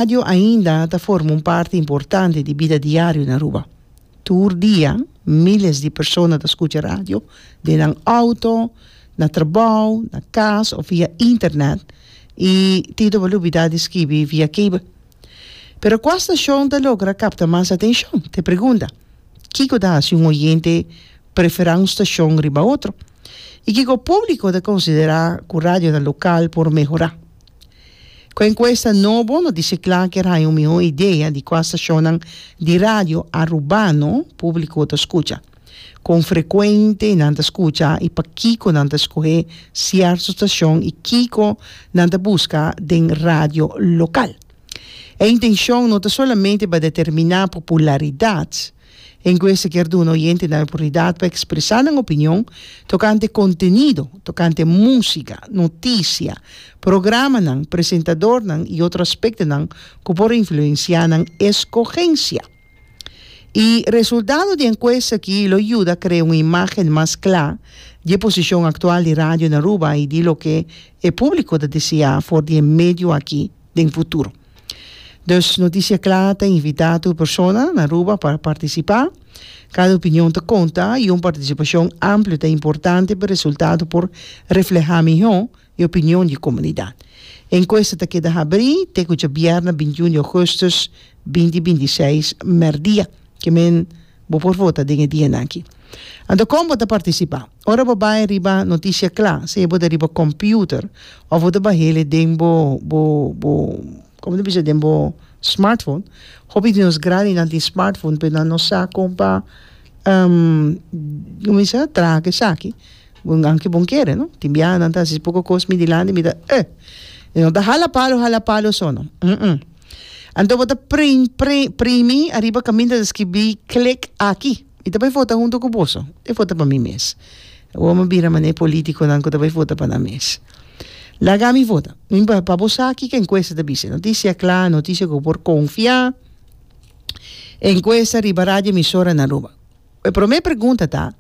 Radio ainda ta forma un parti importante di bida diario na Aruba. Tur dia miles di persona ta scucha radio den nan auto, na trabao, na cas of via internet y tin toba lubida di skibi via cable. Pero cua stacion ta logra capta mas atencion? T'e pregunda. Kico ta haci un oyente prefera un stacion riba otro? Y kico publico ta considera cu radionan local por mehora? Ku e enkuesta nobo lo dishi kla ku e haña un mihó idea di kua stashonnan di radio Arubano públiko ta skucha, kon frekuente nan ta skucha i pakiko nan ta skohe sierto stashon i kiko nan ta buska den radio lokal. E intenshon no ta solamente pa determiná popularidat, Encuesta kier duna oyentenan oportunidad pa expresa nan opinion tocante contenido, tocante musica, noticia, programanan, presentadornan y otro aspectonan cu por influencia nan escogencia. Y resultado di encuesta aki lo yuda crea un imagen mas cla di e posicion actual di radio na Aruba y di loke e publico ta desea for di e medio aki. den futuro. Dus Noticia Cla ta invita tur persona na Aruba pa participa. Cada opinion ta conta y un participacion amplio ta importante pa resultado por refleha miho e opinion di comunidad. E encuesta ta keda habri te cu djabièrnè bintiun di augustus binti binti seis mèrdia. Ke men bo por vota den e dianan aki. Anto con bo ta participa? Ora bo bai riba noticia cla, sea bo ta riba computer of bo ta bahele den bo bo bo como ta bisa den bo smartphone, hopi di nos grandi nan tin smartphone pero nan no sa con pa como bisa traha cu esaki aunke bon kere no, tin biaha nan ta hasi poco cos mi dilanti mi ta eh y no ta hala palo hala palo so no umm anto bo ta primi ariba caminta ta scribi click aki. Mi ta bai vota hunto ku boso. E vota pa mi mes. Awor mi a bira manera e politikonan ku ta bai vota pa nan mes. Laga mi vota. Mi pa pa bo sa kiko enkuesta ta bisa. E notisia kla, e notisia ku por konfiá. Enkuesta riba radio emisora na Aruba. E promé pregunta ta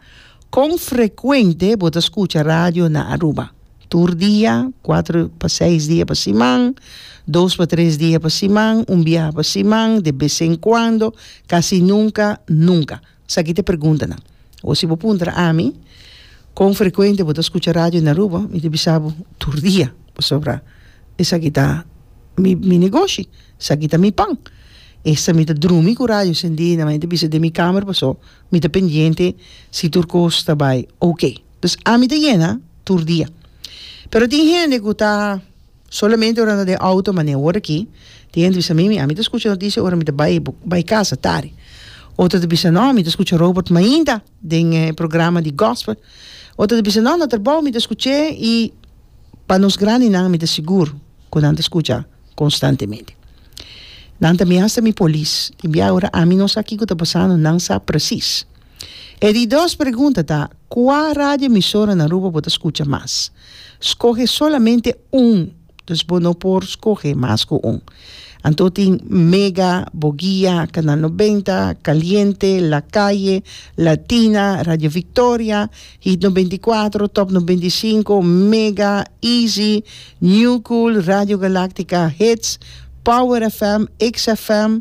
kon frekuente bo ta skucha radio na Aruba? Tur dia, kuater pa seis dia pa siman, dos pa tres dia pa siman, un biaha pa siman, de bes en kuando, kasi nunka, nunka. Esaki ta e preguntanan. Awor si bo puntra na ami kon frekuente bo ta skucha radio na Aruba, mi ta bisa bo, tur dia, pasobra esaki ta mi mi negoshi, esaki ta mi pan. Esta mi ta drumi ku radio sendí, na manera mi ta bisa den mi kamer, paso mi ta pendiente si tur kos ta bai okay. Dus ami ta yena tur dia. Pero tin hende ku ta solamente ora ta den outo mane word aki. Tin hende ta bisa mi, ami ta skucha notisia ora mi ta bai bai kasa tardi. Otro ta bisa no mi ta skucha Robert mainta den e programa di gospel. Otro ta bisa no na trabou mi ta skuch'e i pa nos grandinan mi ta sigur ku nan ta skucha konstantemente. Nan tambe hasta mi polis. Tin bia ora ami no sa kiko ta pasando nan sa presis. E di dos pregunta ta, Kua radioemisora na Aruba bo ta skucha mas? Skohe solamente un, dus bo no por skohe mas ku un. Anto tin Mega, Bogia, Kanal Nobenta, Kaliente, Lakaye, Latina, Radio Victoria, Hit Nobenta i Kuatro, Top Nobenta i Sinku, Mega, Easy, New Cool, Radio Galaktika, Hits, Power FM, X FM,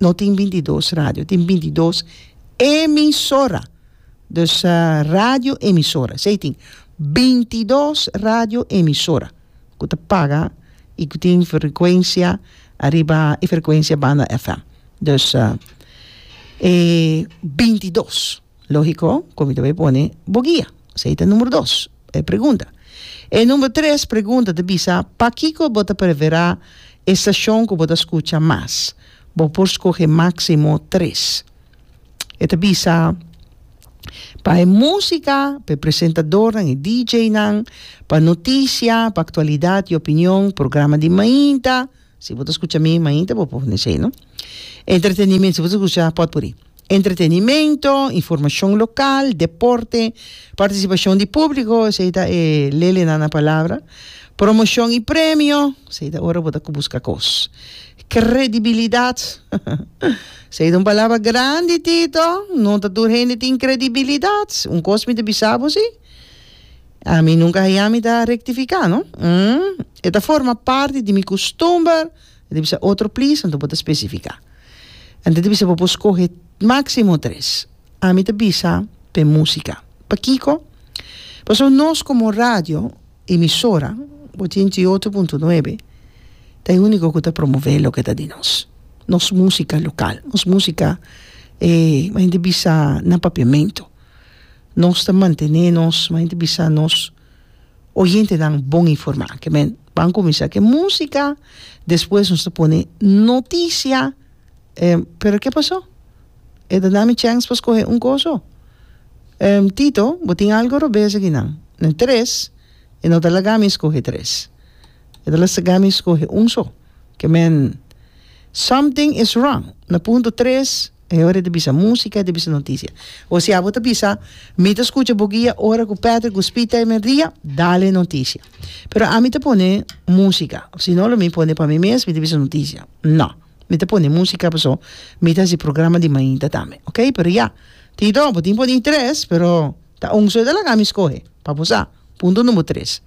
No tin binti dos radio, tin binti dos emisora. Dus radio emisora, esei tin. Binti dos radio emisora ku ta paga i ku tin frekuensia ariba e frekuensia banda FM. Dus e binti dos. Lógiko ku mi ta bai pone bo guia. So ei ta número dos, e pregunta. E número tres pregunta ta bisa, Pakiko bo ta preferá e stashon ku bo ta skucha mas? Bo por skohe máksimo tres. E ta bisa, Pa e músika, pa e presentadornan, e DJnan, pa notisia, pa aktualidat i opinion, programa di mainta, si bo ta skucha mi mainta bo por pone esei no, entretenimen si bo ta skucha potpuri. Entretenimento, informacion local, deporte, participacion di publico, esey ta e lele nan na palabra, promocion y premio, esey ta ora bo ta cu busca cos, credibilidad, esey ta un palabra grandi Tito, no ta tur hende tin credibilidad, un cos mi ta bisa bo si, ami nunca haya mi ta rectifica no, e ta forma parti di mi custumber, E ta bisa otro plis, anto bo ta spesifiká. Anto e ta bisa bo por skohe máksimo tres. Ami ta bisa pa e músika. Pakiko? Pasobra nos komo radio emisora, ochenta i otro punto nuebe, ta e úniko ku ta promové loke ta di nos. Nos músika lokal, nos músika e men ta bisa na papiamentu. Nos ta mantené nos, men ta bisa nos. O hentenan bon informá. Ke men ban kuminsá ke músika, despues nos ta pone notisia. Pero ke pasó? E ta na mi chèns pa skohe un koso? Tito, bo tin algu robes aki nan? Nan tres, e no ta laga mi skohe tres. E ta laga mi skohe un so. Ke men, something is wrong. Na punto tres. E ora ta bisa músika, e ta bisa notisia. Osi'a bo ta bisa, Mi ta skucha bo guia ora ku Patrick Guspita e merdia, dale notisia. Pero ami ta pone músika, si no lo mi pone pa mi mes, mi ta bisa notisia. No. Mi ta pone músika paso mi ta hasi programa di mainta tambe. Ok, pero ya. Tito, bo tin pone interes, pero ta un so e ta laga mi skohe, pa bo sa. Punto number tres.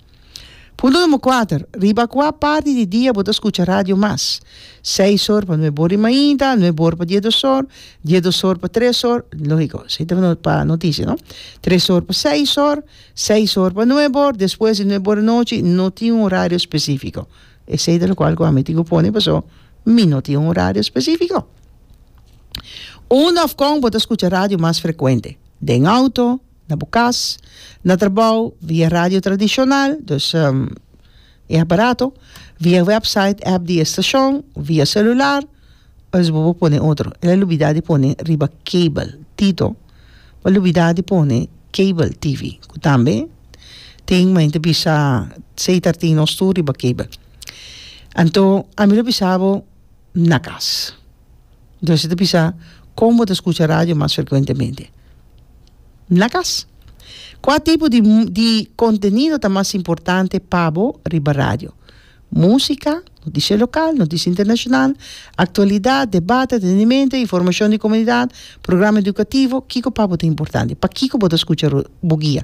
Punto numero kuater, riba kua parti di dia bo ta skucha radio mas? Seis or pa nuebe or di mainta, nuebe or pa diedos or, diedos or pa tres or, logiko esei ta pa notisia no, tres or pa seis or, seis or pa nuebe or, despues di nuebe or di nochi no tin un horario specifico, esei ta lokual ku ami tin ku pone paso mi no tin un horario specifico. Unda òf kon bo ta skucha radio mas frekuente? Den outo? Na bo kas, na trabou, via radio tradishonal, dus e aparato, via wèpsait, èp di e stashon, via selular, òf bo por pone otro. El a lubidá di pone riba kabel. Tito a lubidá di pone kabel TV, ku tambe tin men ta bisa sei ta tin nos tur riba kabel. Anto, ami lo bisa bo na kas. Entonces ta bisa kon bo ta skucha radio mas frekuentemente na kas. Kua tipo di di kontenido ta mas importante pa bo riba radio? Musika, notisia lokal, notisia internashonal, aktualidat, debat, entretenimento, informashon di komunidat, programa edukativo, kiko pa bo ta importante? Pakiko bo ta skucha bo guia?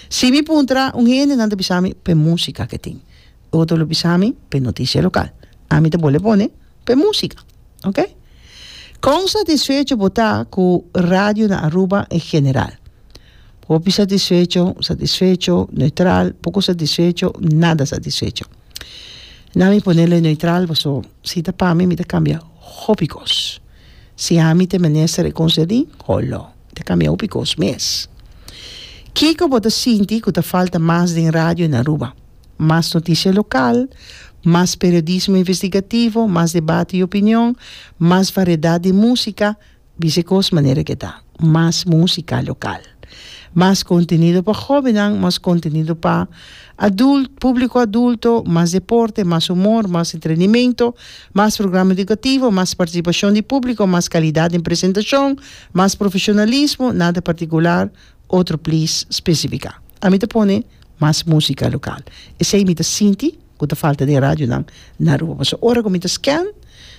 Si mi puntra un hende nan ta bisa mi p'e musika ke tin, otro lo bisa mi p'e notisia lokal. Ami ta bole pone. P'e músika, ok? Kon satisfecho bo ta ku radio na Aruba en general? Hopi satisfecho, satisfecho, neutral, poko satisfecho, nada satisfecho. Nan mi ponele neutral paso si ta pa mi mi ta kambia hopi kos. Si ami ta mester e kos derdí, holo, mi ta kambia hopi kos mes. Kiko bo ta sinti ku ta falta mas den radio en Aruba? Mas noticia local, mas periodismo investigativo, mas debate y opinion, mas variedad di musica, bisa e cos manera ke ta. Mas musica local. Mas contenido pa jobennan, mas contenido pa adult, publico adulto, mas deporte, mas humor, mas entrenimento, mas programa educativo, mas participacion di publico, mas calidad den presentacion, mas profesionalismo, nada particular, Otro please specifica. Ami ta pone mas musica local. Esey mi ta sinti cu ta falta den radionan na Aruba. Pasobra ora cu mi ta scan,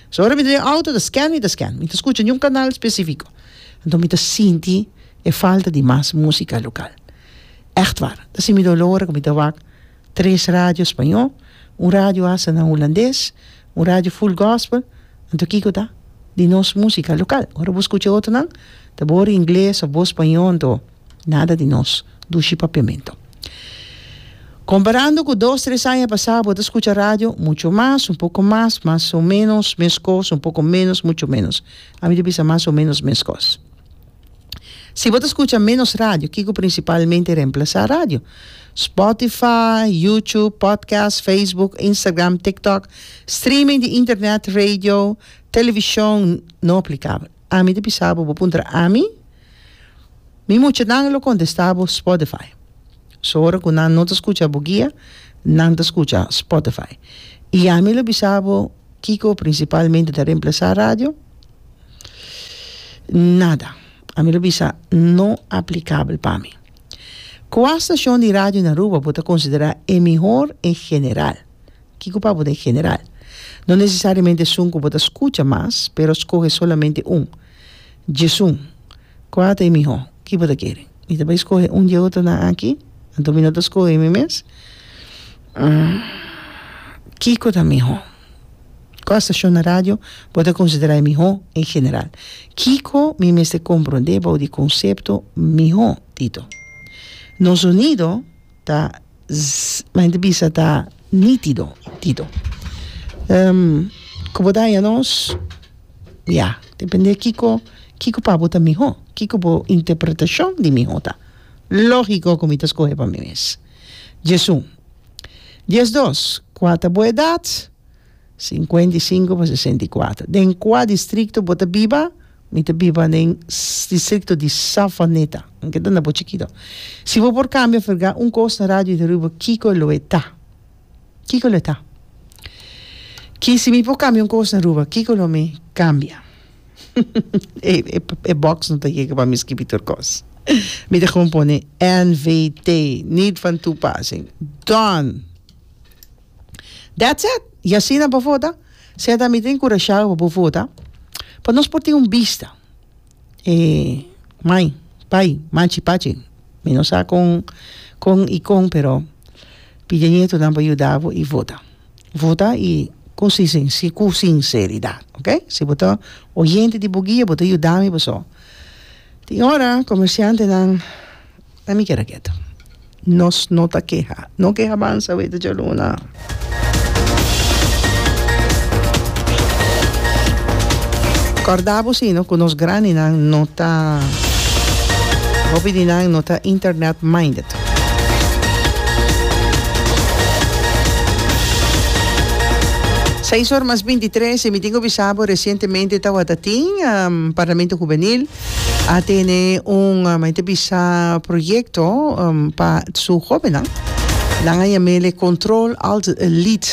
pasobra ora mi ta den auto ta scan mi ta scan. Mi ta scucha niun canal specifico. Enton mi ta sinti e falta di mas musica local. Echtwaar. Ta si mi dolor ora cu mi ta wak. tres radio spañó, un radio hasta na hulandes, un radio full gospel, anto kiko ta di nos músika lokal? Ora bo skucha otronan ta bor ingles of bor spañó anto nada di nos dushi papiamentu. Komparando ku dos tres aña pasá bo ta skucha radio mucho mas, un poko mas, mas o menos, meskos, un poko menos, mucho menos. Ami ta bisa mas o menos meskos. Si bo ta skucha ménos radio, kiko prinsipalmente remplasá radio? Spotify, YouTube, podcast, Facebook, Instagram, TikTok, streaming di internet, radio, televishon, no aplikabel. Ami ta bisa bo, bo puntra ami, mi muchanan lo kontestá bo Spotify. So ora ku nan no ta skucha bo guia, nan ta skucha Spotify. I ami lo bisa bo. Kiko principalmente ta remplasa radio? Nada. A mi lo bisa no aplicabel pa mi. Cua stacion di radio na Aruba bo ta considera e mihor en general? Kiko pa bo ta en general? No necesariamente esun cu bo ta scucha mas, pero scoge solamente un. Djesun. Kua ta e mihó? Ki bo ta kere? Mi ta bai skohe un di e otronan aki? Anto mi no ta skohe mi mes? Kiko ta mihó? Kua stashon na radio bo ta konsiderá e mihó en general? Kiko mi mester komprondé bou di konsepto mihó, Tito? Nos sonido. ta mi hende bisa ta nitido nitido ku bo daña nos ya depende kiko kiko pa bo ta miho kiko bo interpretashon di miho ta logiko ku mi ta skohe pa mi mes diesun diesdos kua ta bo edat. Sinkuenta i sinku pa sesenta i kuater. Den kua distrikto bo ta biba? Mi ta biba den distrikto di Savaneta. Nan ke ta na bo chikito. Si bo por kambia ferga un kos na radio i ta rubo kiko lo e ta? Kiko lo e ta? Ki si mi por kambia un kos na Aruba, kiko lo mi kambia? E box no ta yega pa mi skibi tur kos. Mi ta gewoon pone NVT, Niet Van Toepassing. Done! That's it! Y asina bo vota, sea ta mi ta enkurashabo pa bo vota, pa nos por tin un bista, e mai, pai, machi, pachi, mi no sa kon, kon y kon, pero pidi a ñetunan pa yuda bo y vota. Vota y ku sinse, ku sinseridad, ok? Si bo ta oyente di Buguia, bo ta yuda mi paso tin ora comerciantenan. Pa mi keda ketu. Nos no ta keha. No ke habansa wei ta djaluna. Corda bo si no cu nos granny nan no ta hopi di nan no ta internet minded. Seis ora mas binti tres y mi tin cu bisa bo recientemente tawata tin parlamento juvenil a tene un mai te bisa proyecto um, pa su jobennan. Nan a yamele Control Alt Lead.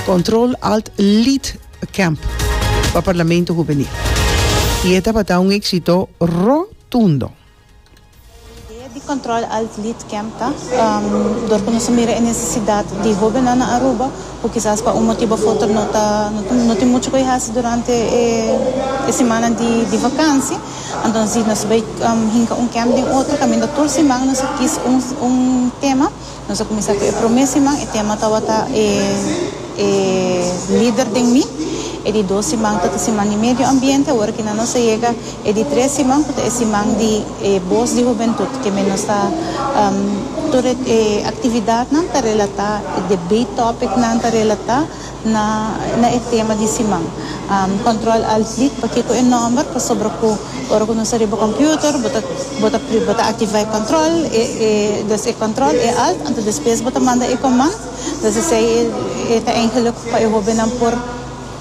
Control Alt Lead Camp pa Parlamento Juvenil. Y e tabata un éxito rotundo. Idea di Control Alt Lead Camp ta, dor cu nos a mira e necesidad di hobennan na Aruba, cu kisas pa un motibo of otro no ta, no tin mucho cu e haci durante e simannan di vakantie, anto si nos a bay hinca un camp den otro caminda tur siman nos a kies un tema. Nos a kuminsá ku e promé siman. E tema tabata e e lider den mi. E di dos siman ta ta siman di medio ambiente. Awor aki nan nos a yega e di tres siman ku ta e siman di e bos di hubentut ke men nos ta tur e aktividatnan ta relatá, e debate tòpiknan ta relatá na e tema di siman. Control Alt Delete pa kiko e nomber pasobra ku ora ku nos ta riba computer bo ta bo ta bo ta activa e control e e des e control e alt anto despues bo ta manda e command des esei e ta eingelijk pa e hobennan por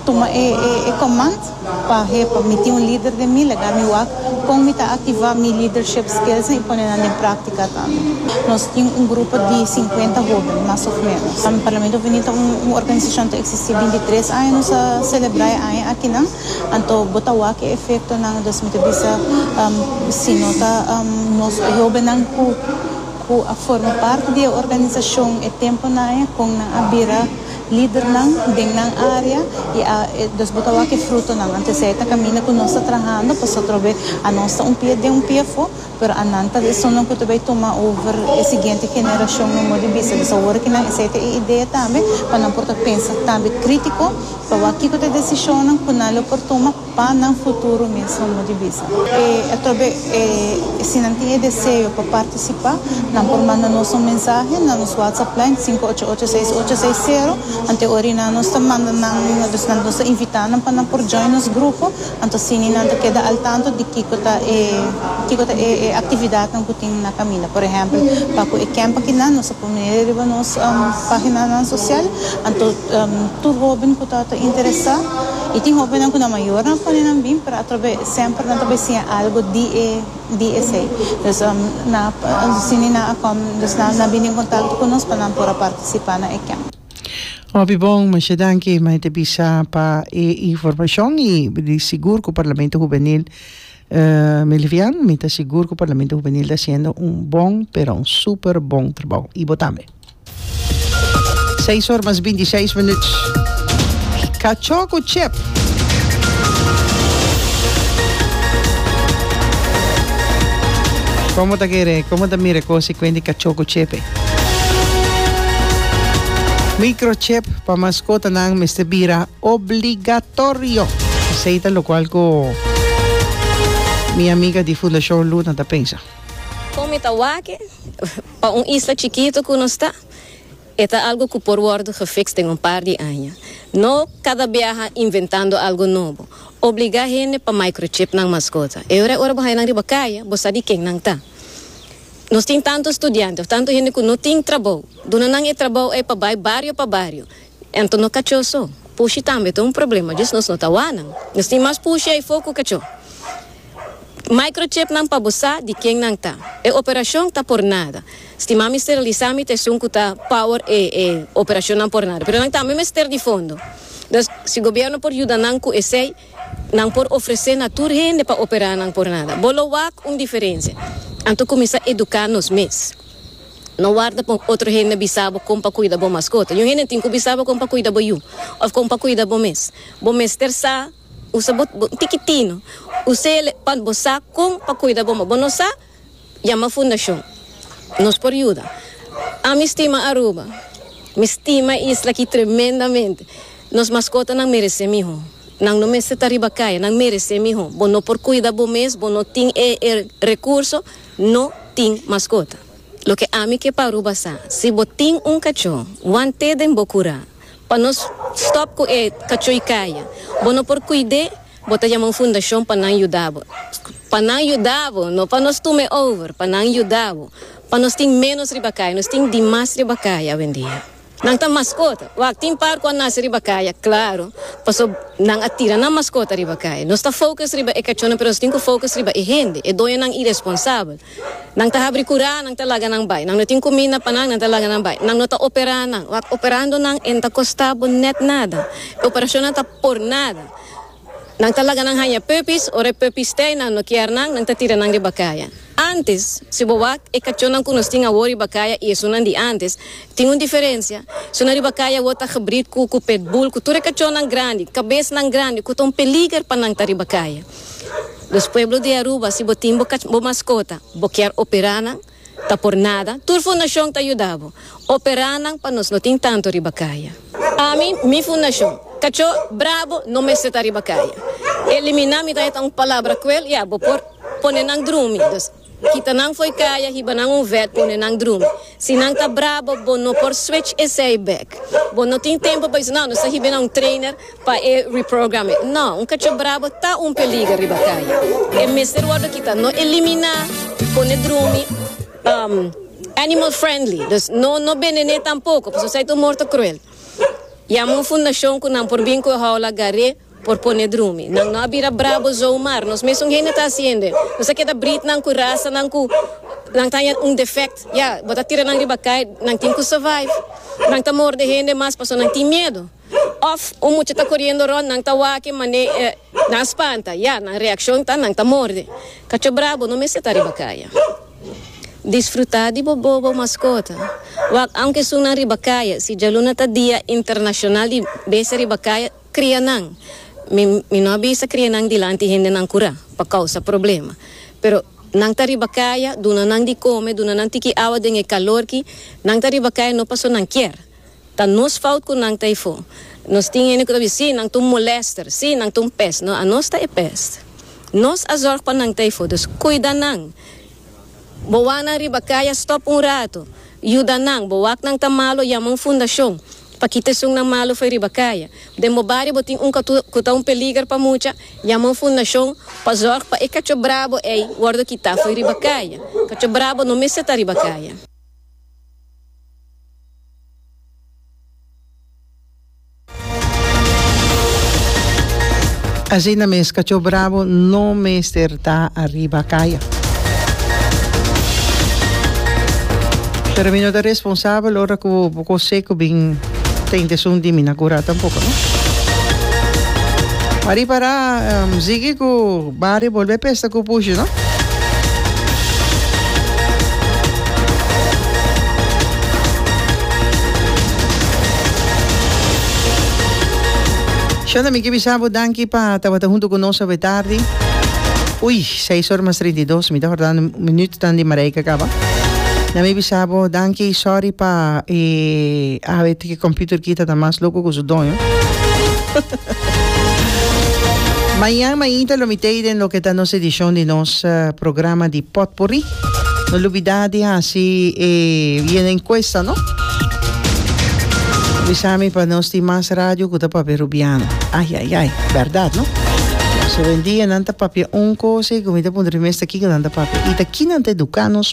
tuma e e command. Pa hepo, mi tin un lider den mi, laga mi wak kon mi ta aktivá mi lidership skillsnan i pone nan den práktika tambe. Nos tin un grupo di sinkuenta hóben, mas òf ménos. Parlamento Huveniel ta un organisashon ta eksistí binti tres aña, nos a selebrá e aña akinan, anto bo ta wak e efektonan dus mi ta bisa si no ta nos hóbennan ku ku a forma parti di e organisashon e tempu naye kon nan a bira lidernan den nan área i a dos bo ta wak e frutonan. Anto esei ta kaminda ku nos ta trahando pasobra otro be a nos ta un pia den un pia afó, pero a nan ta esonnan ku ta bai tuma over e siguiente generashon no modo di bisa. Entonces awor kinan esei ta e idea tambe pa nan por ta pensa tambe krítiko pa wak kiko ta e desishonnan ku nan lo por tuma. Pa nan futuro mesmo no di bisa. E atrobe e si nan tin e deseo pa participa nan por manda nos un mensahe na nos WhatsApp line sinku ocho ocho seis ocho seis sero ante orina nos ta manda nan nos ta invita nan pa nan por join nos grupo anto asini nan ta keda al tanto di kiko ta e kiko ta e e actividadnan ku tin na kaminda por ehempel pa ku e kemp aki nan nos a pone riba nos paginanan sosial anto tur hoben ku ta ta interesa. I tin hóbennan ku nan mayor nan pone nan bin, pero atrò b'e semper nan ta por siña algu di e di esei. Dus nan a sini nan a kòm, dus nan nan a bini en kontakto ku nos pa nan por a partisipá na e kemp. Hopi bon, masha danki mei ta bisa pa e informashon i di sigur ku Parlamento Hubenil mi livian, mi ta sigur ku Parlamento Hubenil ta hasiendo un bon pero un super bon trabou i bo tambe. Seis or mas binti seis minuut. Cachó cu chep. Como ta kere, como ta mira e cos y cuenta e cachó cu chep e. Microchip pa mascotanan mester bira obligatorio. Esey ta locual cu mi amiga di Fundacion Luna ta pensa. Con mi ta wak e. Pa un isla chikito ku nos ta, e ta algu ku por wòrdu gefiks den un par di aña. No kada biaha inventando algu nobo. Obligá hende pa microchip nan maskota. E ora ora bo haña nan riba kaya, bo sa di ken nan ta. Nos tin tantu studiante òf tantu hende ku no tin trabou. Duna nan e trabou ei pa bai bario pa bario. Anto no cachó so. Pushi tambe ta un problema djis nos no ta wanan. Nos tin mas pushi ai fo cu cachó. Microchip nan pa bo sa di ken nan ta. E operacion ta por nada. Stima mi steriliza mi ta esun cu ta power e e operacion nan por nada. Pero nan tambe mester di fondo. Nos si gobierno por yuda nan cu esey. Nan por ofresé na tur hende pa operá nan por nada. Bo lo wak un diferensia anto kuminsá eduká nos mes. No warda pa un otro hende bisa bo kon pa kuida bo maskota. Yu hende tin ku bisa bo kon pa kuida bo yu òf kon pa kuida bo mes. Bo mester sa usa bo bo un tikitino usele pa bo sa kon pa kuida bo, ma bo no sa. Yama Fundacion. Nos por yuda. Ami stima Aruba. Mi stima e isla aki tremendamente. Nos maskotanan meresé mihó. Nan no mester ta riba kaya. Nan meresé mihó. Bo no por kuida bo mes, bo no tin e e rekurso, no tin maskota. Loke ami ke pa Aruba sa, si bo tin un kachó, wan té den bo kurá. Pa nos stòp ku e kachói kaya. Bo no por kuid'é. Bo ta yama un fundashon pa nan yuda bo. Pa nan yuda bo, no pa nos tuma e over, pa nan yuda bo. Pa nos tin ménos riba kaya, nos tin dimas riba kaya awendia. Nan ta maskota. Wak, tin par ku a nase riba kaya, klaru, paso nan a tira nan maskota riba kaya. Nos ta fokus riba e kachónan, pero nos tin ku fokus riba e hende, e doñonan iresponsabel. Nan ta habri kurá, nan ta laga nan bai. Nan no tin kuminda pa nan, nan ta laga nan bai. Nan no ta operá nan. Wak, operando nan e no ta kostá bo nèt nada. E operashonnan ta por nada. Nan ta laga nan haña puppies, ora e puppies te nan no kier nan, nan ta tira nan riba kaya. Antes, si bo wak, e kachonnan ku nos tin awor riba kaya i esunnan di antes, tin un diferensia. Esunnan riba kaya awor ta hibrid ku ku pit bull, ku tur e kachonnan grandi, kabesnan grandi, ku ta un peliger pa nan ta riba kaya. Dus, pueblo di Aruba, si bo tin bo kach bo maskota, bo kier opera nan, Ta por nada, tur fundashon ta yuda bo. Operá nan pa nos no tin tantu riba kaya. Ami, mi fundashon, Kachó Brabo no mester ta riba kaya. Eliminá mi ta heta un palabra kruel, ya, bo por pone nan drumi. Dus, kita nan fo'i kaya, hiba nan un vèt, pone nan drumi. Si nan ta brabo, bo no por switch esei bèk. Bo no tin tempu pa bisa, No, nos ta hiba na un trainer. Pa e reprograme. No, un kachop brabo ta un peliger riba kaya. E mester wordo kita, no eliminá, pone drumi, um, animal friendly, dus no no benené tampoko, pasobra esei ta un morto cruel. Yama un fundashon ku nan por bin ku e houla gar'é por pone drumi. Nan no a bira brabo zon mar, nos mesun hende ta hasiendo e. Nos a keda britnan ku rasanan ku nan taña un defect. Ya, bo ta tira nan riba kaya, nan tin ku survive. Nan ta morde hende mas pasobra nan tin miedu. Òf un mucha ta koriendo rònt, nan ta wak-e man'é nan a spanta. Ya, nan reakshon ta nan ta morde. Kacho brabo no mester ta riba kaya. Disfrutá di bo bobo maskota. Wak aunke esun nan riba kaya. Si djaluna ta Dia Internashonal di Besti Riba Kaya, kria nan. Mi mi no a bisa kria nan dilanti hendenan kurá, pa kousa problema. Pero nan ta riba kaya, duna nan di kome, duna nan tiki awa den e kalorki. Nan ta riba kaya no paso nan kier. Ta nos fout cu nan ta e fo. Nos tin hende cu ta bisti, si, nan ta un molester, si, nan ta un pest. No, anos ta e pest. Nos a zorg pa nan ta e fo. Dus, cuida nan. Bo wak nan riba cay a stop un rato. Yuda nan. Bo wak nan ta malo, yama un fundacion pa kita esunnan malo fo'i riba caya. Den bo bario bo tin un catu cu ta un peliger pa mucha, yama un fundacion pa zorg pa e cacho brabo ey wordo kita fo'i riba caya. Cacho brabo no mester ta riba caya. Asina mes Cachó Bravo no mester ta ariba kaya. Pero mi no ta responsabel ora ku bo kosé ku bin ta intesun di mi na kurá tampoko no. Mari para sigui ku. Barrio bolbe pesta cu pushi no. Shonda mi ki bisa bo danki pa tabata hunto cu nos awe tardi. Ui, seis ora mas treinta i dos mi ta hordando minutonan di Marijke caba. Na mi bisa bo danki sorry pa e awe E computer kita ta mas loco cu su doño. Mañan mainta lo mitey den loke ta nos edicion di nos programa di potpourri. No lubida di haci e bieno encuesta no. Bisa mi pa nos tin mas radio cu ta papia Rubiano. Ay ay ay, berdad no. So hoy en dia nan ta papia un cosa y cu mi ta puntra mi mes ta kico nan ta papia y ta ki nan ta educa nos.